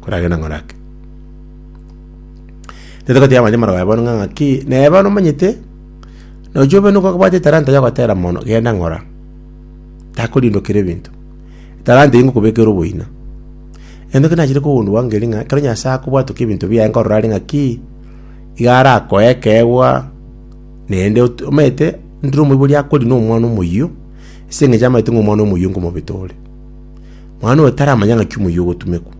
koragenda ng'a orake. Nigo togoteeba amachie amarabaya bono ng'a ng'aki, naye bono omanyete, nonya obe nigo obwate etalanta yogotera mono, genda ng'ora, takorindokera ebinto. Etalanta eywo ngokobekera oboina. Egento kende nachire kogundua ngeria ng'a ekero Nyasae akobwatokia ebinto biaye nkorora are ng'aki, iga arakoe ekeegwa, naende ot- omanyete, ndire omoibori akori na omwana omoyio, ase eng'encho amanyete ng'a omwana omoyio nkomobete ore. Mwana oyo taramanya ng'aki omoyio ogotumekwa.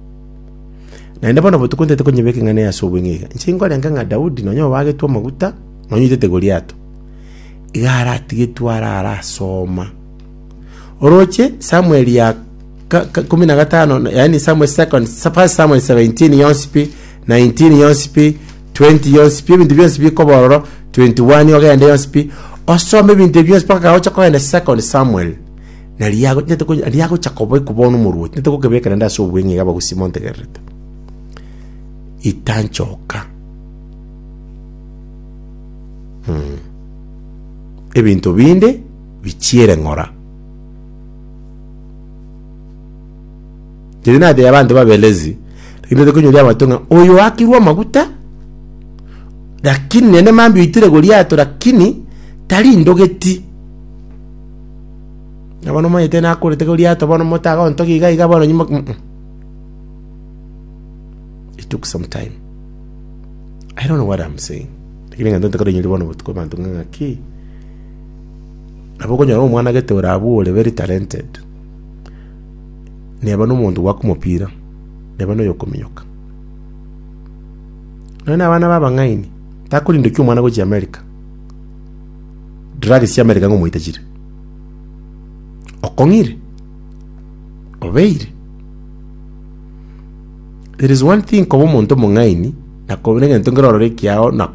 Naende bono botuko ntaete konyeba ekeng'ana eye ase obong'ina iga. Inche nkorenga ng'a Daudi nonya obagetwe amaguta, nonya oitete Goliato, iga aratigetwe are arasoma. Oroche Samuel ya ka- ka- kumi na gatano, na- yaani Samuel second, sa- first Samuel 17 yonsi pi, 19 yonsi pi, 20 yonsi pi, ebinto bionsi bikoba ororo, 21 ogende yonsi pi, osome ebinto ebi bionsi mpaka gaocha kogenda second Samuel. Na riria ago- riria ago- riria agocha kobekwa bono omorwoti, nete gokebeka naende ase obweng'e iga abagusii montegererete. Itanchoka. Mm. Ebinto binde bichiere ng'ora. Teri natebia abanto babelezi, lakini nete konyoria abanto ng'a oyo oakirwe amaguta, lakini naende mambia oitire goriato lakini, tarindogeti. Na bono omonyete nakorete korwa riato bono motaga ontogia iga iga bono nyimo um um. It took some time. I don't know what I'm saying. Lakini egento ntakora inyori bono botuko abanto ng'a ng'aki. Nabo okonyora omwana gete ore abwo ore very talented. Neba nomonto gwaka omopira, neba noyo okominyoka. Nonya na abana ba abang'aini, takorindokia omwana gochia America. Drugs chiamerika ng'a omoitachire. Okong'ire. Obeire. There is one thing koba omonto omong'aini, na koba egento nkerororo ekiao na ko